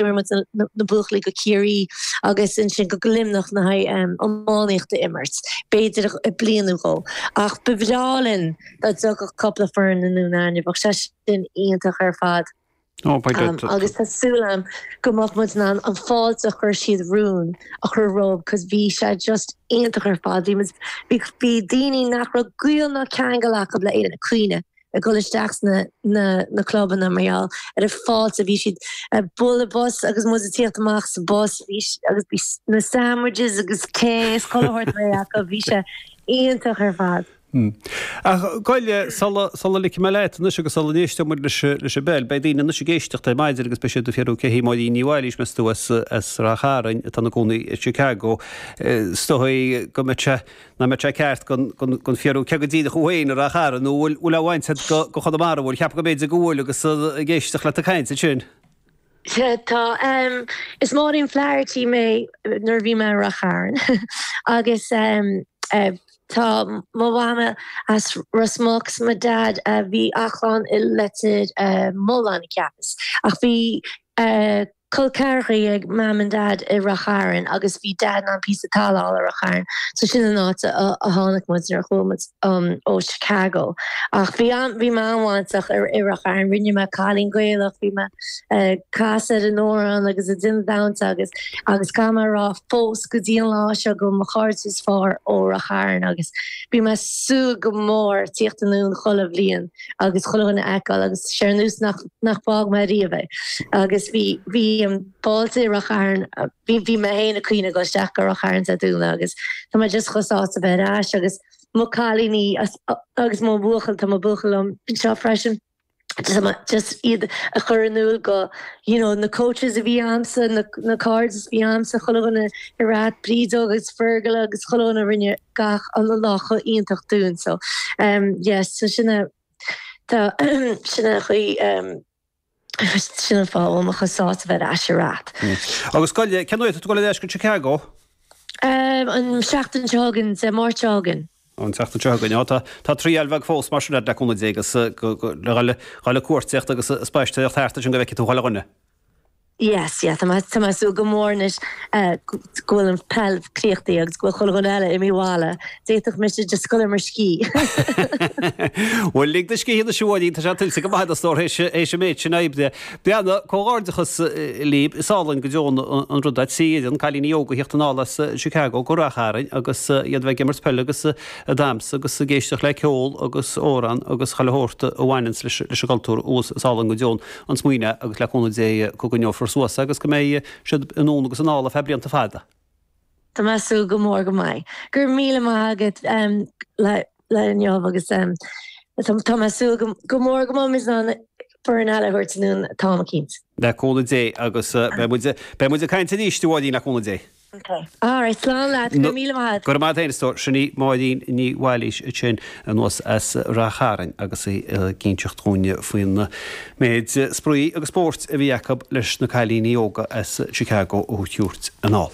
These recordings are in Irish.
muid na buachaillí go Ciarraí agus ansin go Luimneach na haghaidh iománaíocht a imirt, b'fhéidir bliain nó dhó. Ach ba bhreá linn dá dtiocfadh cupla foireann anonn againn, bheadh sé sin iontach ar fad. Agus tá súil agam go mbeadh muid in ann an fáilte a chuir siad romhainn a chur rompu cause bhí sé just iontach ar fad. Bhí muid, bhí daoine nach raibh gaol ná ceangal acub le Éirinn ag caoineadh ag dul isteach sna na clubanna mar gheall ar an fáilte bhí siad ag bualadh bos agus muid ag tíocht amach sa bus agus bhí na sandwiches agus tae is chuile shórt réidh acu bhí sé iontach ar fad. Ach gabh i leith sula sula ligfidh mé leat anois agus sula n-éisteodh muid leis leis an bpeil beidh daoine anois ag éisteacht ar maidin agus beidh siad ag fiafraí cé hí Máirín Ní Bhailís meas tú as as Ráth Chairn atá ina gcónaí i Chicago is dóigh go mbeadh sé nach mbeadh sé ceart gan fiafraí cé go díreach thú féin i Ráth Chairn nó bhfuil aon bhaint a'd go Chonamara bhfuil, cheapfá go mb'fhéidir go bhfuil agus ag éisteacht leat ag caint ansin. Sea, tá. Is Máirín Flaherty mé nuair a bhí mé i Ráth Chairn agus tá mo Mhama as Ros Muc 's mo Dhaid a bhí a chlann i Leitir Mealláin cheapas ach bhí Col ceathrachaí ag Mam and Dad i Ráth Chairn agus bhí Dad in ann píosa talamh a fháil i Ráth Chairn so sin an áit a tháinig muid nuair a chuaigh muid ó Chicago. Ach bhí am, bhí mé an-bhainteach i Ráth Chairn, rinne mé cailín Gaelach, bhí mé ag casadh na n-amhrán agus ag déanamh dánta agus, agus caithfidh mé a rá fós go dtí an lá seo go bhfuil mo chairde is fearr ó Ráth Chairn agus bíonn mé ag súil go mór tíocht anonn chuile bhliain. agus chuile dhuine a fheiceáil agus sé ar nós nach nach bhfág mé riamh é. Agus bhí bhí um, fáilte i Ráth Chairn a bhí bhí mé fhéin ag caoineadh ag dul isteach go Ráth Chairn Dé Domhnaigh agus tá mé just chomh sásta bheith ar ais agus mo cailíní as agus mo bhuachaill tá mo buachaill liom anseo freisin. just iad a chur in iúl go you know, na coaches a bhí a'msa na, na cairde a bhí a'msa chuile dhuine i Ráth Bríd Óg agus Fergal agus chuile dhuine rinne gach an lá chomh iontach dúinn so yes so sin a tá sin an chaoi sin an fáth a bhfuil mé chomh sásta a bheith ar ais ar ait. Agus gabh i leith cén uair atá tú ag dul ar ais go Chicago? An seachtain seo chugainn Dé Máirt seo chugainn. An tseachtain seo chugainn á tá triail bheag fós mar sin a'd le comhluadar agus le dhul ag cuartaíocht agus spaisteoireacht thart ansin go bhfeicfidh tú chuile dhuine. Yes, yeah, tá mé, tá mé ag súil go mór anois go bhfuil an peil críochnaithe agus go bhfuil chuile dhuine eile imithe abhaile, d'fhéadfadh mise just a ghoil ar mo scíth. Bhuel, lig do scíth anois a Mháirín, tá sé tuillte go maith a'd a stór théis, théis an méid sin oibre. Breanna, comhghairdeachas libh, is álainn go deo an rud an t-oiread cailíní óga a thíocht anall as Chicago go Ráth Chairn agus iad bheith ag imirt peil agus ag damhsa agus ag éisteacht le ceol agus amhrán agus chuile shórt a bhaineanns leis, leis an gcultúr abhus, is álainn go deo an. an smaoineadh agus le cúnamh Dé go gcoinneofar suas é agus go mbeidh siad in ann agus anall ar feadh blianta fada. Tá mé ag súil go mór go mbeidh. Go raibh míle maith agat le inniu agus tá mé ag súil go mór go mbeimid in ann foireann eile a thabhairt anonn táim cinnte. Le cúnamh Dé agus beidh muid ag caint arís a Mháirín le cúnamh Dé. Okay. All right. Slán leat. Go raibh míle maith agat. Go raibh maith a't, a stór. Sin í Máirín Ní Mhéalóid ansin anuas as Rath Chairn agus í ag inseacht dhúinn faoin méid spraoi agus spóirt a bhí acu leis na cailíní óga as Chicago a thabhairt anall.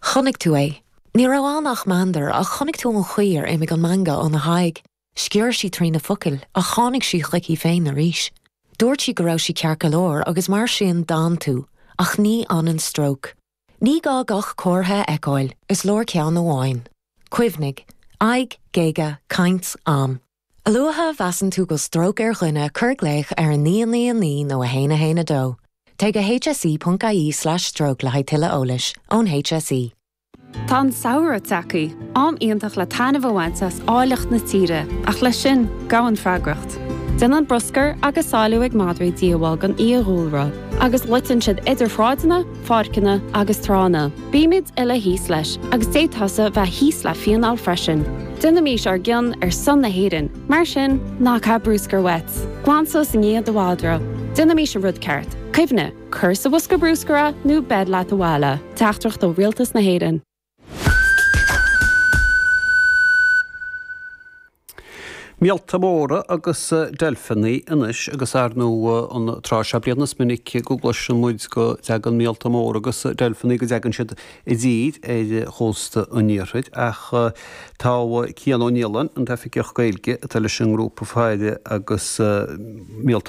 Chonaic tú é. Ní raibh ann ach meandar ach chonaic tú an chaoi ar imigh an meangadh óna haghaidh. Sciorr sí trí na focail ach tháinig sí chuici féin arís. Dúirt sí go raibh sí ceart go leor agus mar sin d'fhan tú, ach ní fhanann stróc. Ní gá gach comhartha a fheiceáil, is leor ceann amháin. Cuimhnigh, aghaidh, géaga, caint, am. A luaithe a mheasann tú go bhfuil stróc ar dhuine cuir glaoch ar 999 nó 112. Téigh go hse.ie slash stroke le haghaidh tuilleadh eolais, ón HSE. Tá an samhradh tagthaí, am iontach le taitneamh a bhaint as áilleacht na tíre, ach leis sin, gabhann freagracht. Déanann bruscar agus sálú ag madraí díoghbháil don fhiadhúlra, agus loiteann siad idir shráideanna, pháirceanna agus tránna. Bímid uile thíos leis, agus d'fhéadfadh tusa bheith thíos le fíneáil freisin. Déanaimís ár gcion ar son na hÉireann, mar sin, ná caith bruscar uait. Glan suas i ndiaidh do mhadra. Déanaimís an rud ceart. Cuimhnigh. Cuir sa bhosca bruscair é nó beir leat abhaile. Teachtaireacht ó Rialtas na hÉireann. Míolta móra agus deilfeanaí anois agus ar ndóigh an tráth seo bliana is minic go gcloiseann muid go dtagann míolta móra agus deilfeanaí, go dtagann siad i dtír ar chósta an iarthair ach tá Cian Ó Nialáin, an tOifigeach Gaeilge atá leis an ngrúpa faire agus míolta